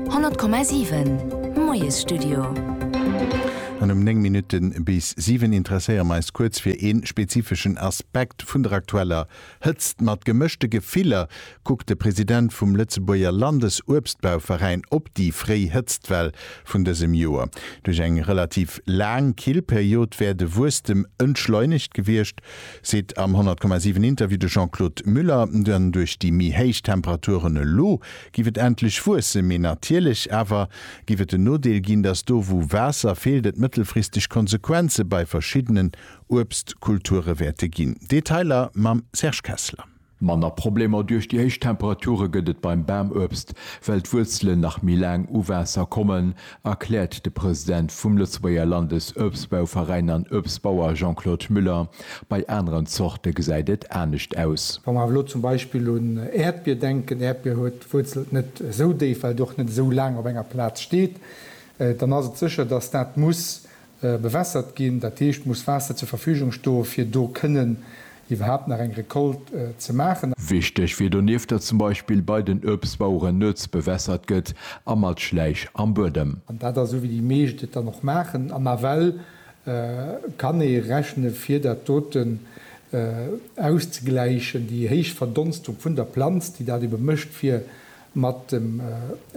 100,7 Moiesstudio. An um 9 Minutte bis 7 interesséiere mer eis kuerz fir ee spezifeschen Aspekt vun der aktueller Hëtzt. Mat gemëschte Gefiller kuckt de President vum Lëtzebuerger Landesuebstbauveräin op déi fréi Hëtztwell vun dësem Joer. Duerch eng relativ laang Killperiod wär de Wuesstem entschleunegt gewiescht. Seet am 100,7 Interview de Jean-Claude Muller. Dann duerch déi méi héich Temperaturen elo giff et endlech wuesse, mee natierlech awer giff et den Nodeel ginn, datt do wou Waasser feelt et mëttelfristeg Konsequenze bei verschiddenen Uebstkulture wäerte ginn. Detailer mam Serge Kessler. Manner Problemer duerch déi héich Temperature gëtt et beim Bamuebst, well d'Wuerzelen nach méi laang u Waasser kommen, erkläert de President vum Lëtzebuerger Landesuebstbauveräin an Uebstbauer Jean-Claude Müller. Bei aneren Zorte gesäit et anescht aus. Wa mer awer elo zum Beispill un Äerdbier denken, Äerdbier huet d'Wuerzelt net esou déif, well et och net esou laang op enger Plaz steet, dann ass et sécher, datt dat muss Bewässert ginn, dat heescht muss Waasser zur Verfügung sto fir do kënnen iwwerhaapt nach eng Récolte ze maachen. Wichteg wier donieft, datt zum Beispill bei den Uebstbaueren nuets bewässert gëtt a mat Schläich am Buedem. An dat ass esou wéi déi meescht et dann och maachen. Am Aval kann ee rechne fir dat doten auszegläichen, déi héich Verdonstung vun der Planz déi dat ebe mécht fir Mat dem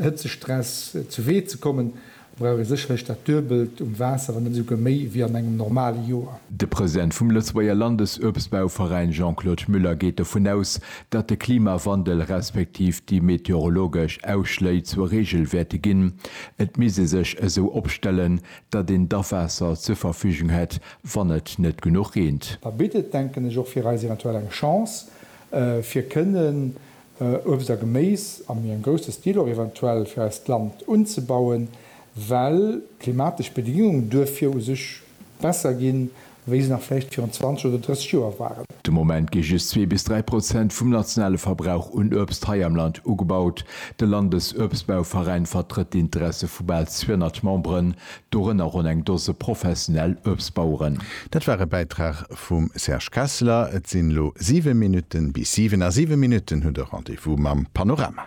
Hëtzestress zu Wee ze kommen, brauch ee sécherlech dat Duebelt um Waasser, wann net esouguer méi, wéi an engem normale Joer. De President vum Lëtzebuerger Landesuebstbauveräin Jean-Claude Muller geet dovun aus, datt de Klimawandel respektiv déi meteorologesch Ausschléi zur Reegel wäerte ginn. Et misst ee sech esou opstellen, datt een d'Awaasser zur Verfügung hätt, wann et net genuch reent. Da bitt et, denken ech, och fir eis eventuell eng Chance, fir kënnen, Uebst a Geméis a méi engem grousse Stil och eventuell fir eist Land unzebauen, well d'klimatesch Bedingunge duerfir u sech besser ginn, wéi se nach vläicht virun 20 oder 30 Joer waren. De Moment gi just zwee bis dräi Prozent vum nationale Verbrauch un Uebst hei am Land ugebaut. De Landesuebstbauveräin vertrëtt d'Interesse vu bal 200 Memberen, Dorënner ronn eng Dose professionell Uebstbaueren. Dat war e Bäitrag vum Serge Kessler. Et sinn elo 7 Minutten bis 7. A 7 Minutten hutt Der Rendez-vous mam Panorama.